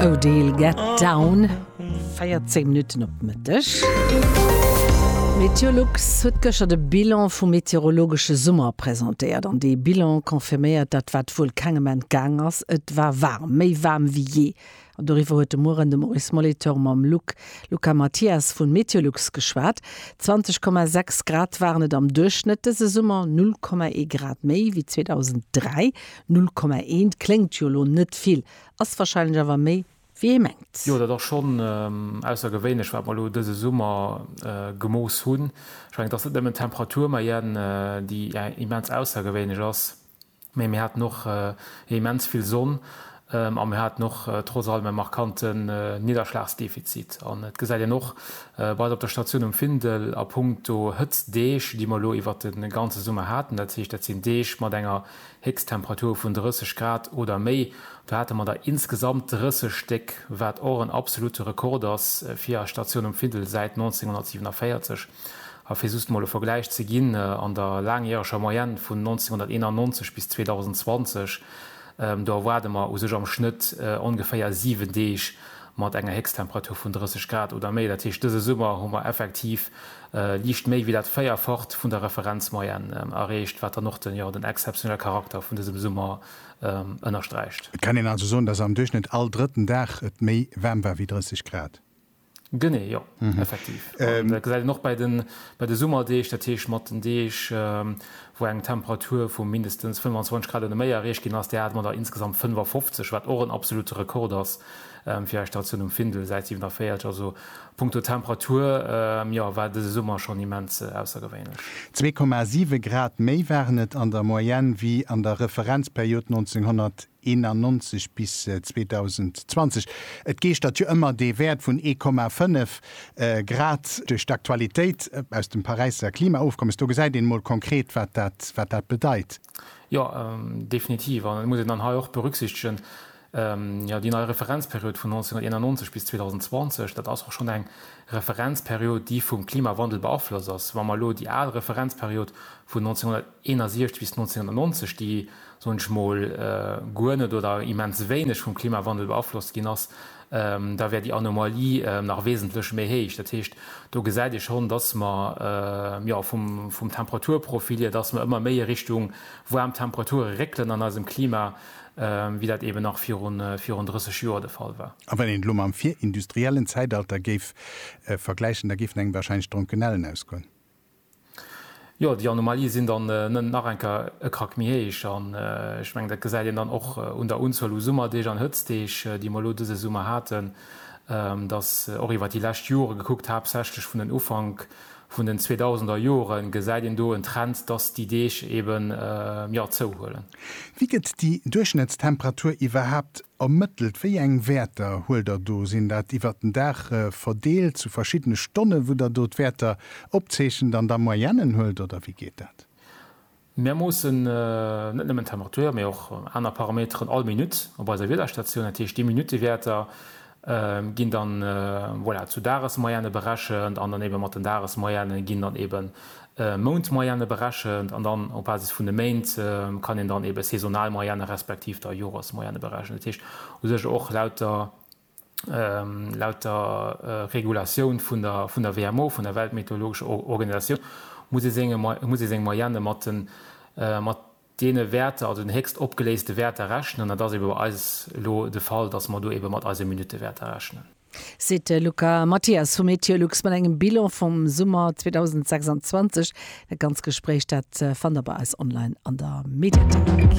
Odile get down, 14 Minutten op de Mëtteg. Meteolux huet gëschter de Bilan vum meteorologesche Summer presentéiert. An dee Bilan confirméiert dat, wat wuel kengem entgaang ass, Et war waarm, méi waarm wéi jee. An doriwwer huet de Mueren de Maurice Molitor mam Luc Luca Mathias vu Meteolux geschwat. 20,6 Grad waren et am Duerchschnëtt dëse Summer, 0,1 Grad méi wéi 2003. 0,1 kléngt jo elo net vill. Ass wahrscheinlech awer méi wéi ee mengt. Jo dat ass schonn aussergewéinlech wat mer elo dëse Summer gemooss hunn. Ech mengen et ass net nëmmen d'Temperatur Mayenne déi immens aussergewéinlech ass, mee mir haten och immens vill Sonn a mir haten och trotz allem e markanten Nidderschlagsdefizit. An et gesäit een och bei eis op der Statioun um Findel a punkto Hëtztdeeg déi mer elo iwwert de ganze Summer haten, dat heescht dat sinn Deeg mat enger Héchsttemperature vun 30 Grad oder méi. Do hate mer der insgesamt 30 Stéck, wat och en absolute Rekord ass fir eis Statioun um Findel säit 1947. A fir just mol e Vergläich ze ginn, an der laangjäreger Moyenne vun 1991 bis 2020, do erwaarde mer u sech am Schnëtt ongeféier 7 Deeg mat enger Héchsttemperature vun 30 Grad oder méi. Dat heescht, dëse Summer hu mer effektiv liicht méi wéi dat Véierfacht vun der Referenzmoyenne erreecht, wat dann och den exzeptionelle Charakter vun dësem Summer ënnersträicht. Et kann een also soen, dass am Duerchschnëtt all drëtten Dag et méi waarm war wéi 30 Grad. Genee, jo, effektiv. Dat gesäit een och bei de Summerdeeg, dat heescht mat den Deeg, wou eng Temperatur vu mindestens 25 Grad oder méi erreecht ginn ass. Där hate mer der insgesamt 55, wat och en absolute Rekord ass. Fir Iech d'Station um Findel, Säit 47, also punkto Temperatur, jo, war dëse Summer schonn immens aussergewéinlech. Zwee Komma siwe Grad méi waren et an der Moyenne wéi an der Referenzperiod 1991 bis 2020. Et geeschtert jo ëmmer dee Wäert vun ee Komma fënnef Grad duerch d'Aktualitéit aus dem Paräisser Klimaofkommes. Do gesäit een emol konkret, wat dat bedeit. Jo, definitiv. An et muss een dann hei och berücksichtegen, Jo, déi nei Referenzperiod vun 1991 bis 2020, dat ass och schonn eng Referenzperiod, déi vum Klimawandel beaflosst ass. Wa mer elo déi al Referenzperiod vun 1961 bis 1990, déi, soen ech mol, guer net oder immens wéineg vum Klimawandel beaflosst ginn ass, da wär déi Anomalie nach wesentlech méi héich. Dat heescht, do gesäit ee schonn, dass mer, jo, vum Temperaturprofil hier, dass mer ëmmer méi a Richtung waarm Temperature réckelen an eisem Klima. wéi dat eben nach virun 30 Joer de Fall war. A wann een et elo mam virindustriellen Zäitalter géif vergläichen, da géifen engem warscheinlech d'Dronkenellen ausgoen. Jo, déi Anomalie sinn dann nach eng Kéier e Krack méi héich. An ech mengen, dat gesäit een dann och un der Unzuel u Summerdeeg an Hëtztdeeg, déi mer elo dëse Summer haten, datt och iwwer déi lescht Jore gekuckt haaptsächlech vun den Ufank, vun den 2000 er Jore gesäit een do en Trend, dass déi Deeg eben jo zouhuelen. Wéi gëtt déi Duerchschnëttstemperatur iwwerhaapt ermëttelt? Wéi eng Wäerter huelt der do? Sinn dat iwwert den Dag verdeelt zu verschiddene Stonne wou der do d'Wäerter opzeechent an da Moyennen huelt oder wéi geet dat? Mir moossen net nëmmen d'Temperatur, mee och aner Parameteren all Minutt op eiser Wiederstatioun. Dat heescht, déi Minuttewäerter ginn dann, voilà, zu Dagesmoyenne berechent an dann ebe mat den Dagesmoyenne ginn dann ebe Mountmoyenne berechent an dann op Basis vun de Méint kann een dann ebe saisonal Moyenne respektiv da Joresmoyenne berechnen. Dat heescht u sech och laut der. Laut der Regulatioun vun der WMO, vun der Weltmeteorologescher Organisatioun, muss ee seng Moyenne mat deene Wäerter, also den héchst opgeléiste Wäerter rechnen. Dat ass ebe bei eis elo de Fall, dass mer do ebe mat eise Minuttewäerter rechnen. Seet de Luca Mathias vu Meteolux mat engem Bilan vum Summer 2026. Dat ganz Gespréich, dat fannt der bei eis online an der Mediathéik.